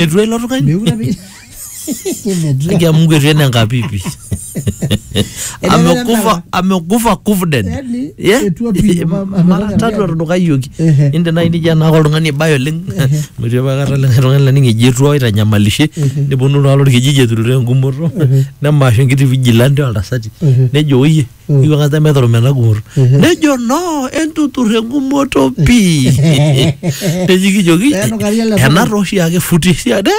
etu elo tung'ani Mekure apa- Kimetua. akia mungu etu ene nkapipi Ele amekufa lala. amekufa kufden Yaani, etu api, ama- ama- mara ama- tatu etudukayioki Ehe. inde nai nija naaka oltung'ani ibae oleng metii apa kata likae tung'ani laning eji etu aitanyamalishe neponu iltung'anak lorkijiji eturuto engumoto nemaashu enkiti vigilante oltasati Ehe. nejo oyie Mm. iwuang'a sida meeta olomi ena gumoto nejo no entutur engumoto pii neji kijoki Pee enukari ele sumu. ena tooshi ake futi siade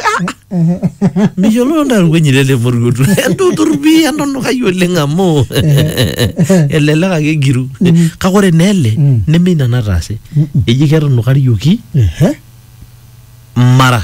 miyiololo ntae olwenyi lele moriotu entutur pii entunukai oleng amu elelek ake egiru kake ore naa ele Mm. neme ina nataase eji ketunukarioki Ehe. mara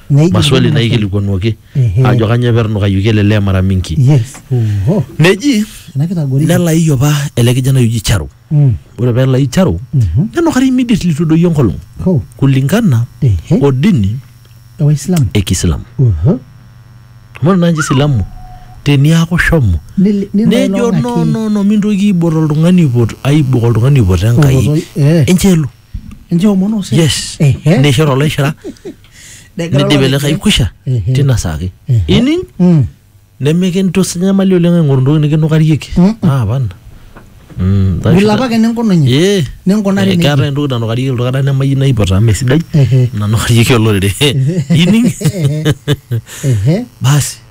Neigil maswali ninye naikilikuanuaki Ehe. ajo kanyoo epernukayoki ele lee mara mingi yes oho neji ena kitagoriki nelaiyu apa ele kijanai oji Charo Mm. ore pelai Charo Mhm. nenukari immediately itu edoyio enkolong ho kulingana ehe o dini ewaislamu e Kiislamu oho amu ore naaji Isilamu teniaku shomo Nil- nejo nilailong'aki. no no no mintoki aibot oltung'ani aipot aibok oltung'ani aipot Enkai Oloto- eh. enchelu ninche omon osesen yes Ehe. neishir olaishira Negira nidip olopeny- ele kai kwisha Ehe. tina saa ake Ehe. ining Mm. nemikintus nyamali oleng aing'oru ntoki nikinukarieki Mm-mm. apana Mm, taisho- Bila apake ninkununye Ee. ninkunari Eh, nejia. keetae entoki nanukarieki iltung'anak nemayieu naipota amu mesidai Ehe. nanukarieki olorere ining Ehe. basi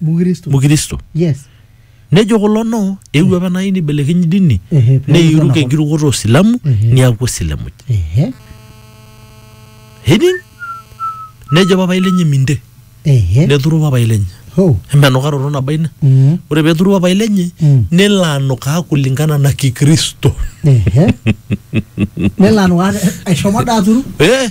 mukristo mukristo yes nejo kulo no eewuo apa nai nibelekeny dini Ehe, pee neiruk eton enkirukoto osilamu Ehe. niaku osilamuj ehe hening nejo papai lenye minte ehe neturu papai lenye ho empenukaroto nabo ina Mm. ore peturu papai lenye Mm. nelo anukaa kulingana na kikristo ehe nelo anukaa eshomo daa aturu eh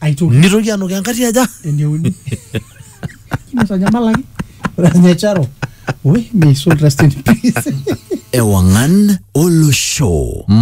aitoki nitoki anukaa enkati aja eneuni nitanyamalaki ore ninye charo we may soul rest in peace ewang'an olosho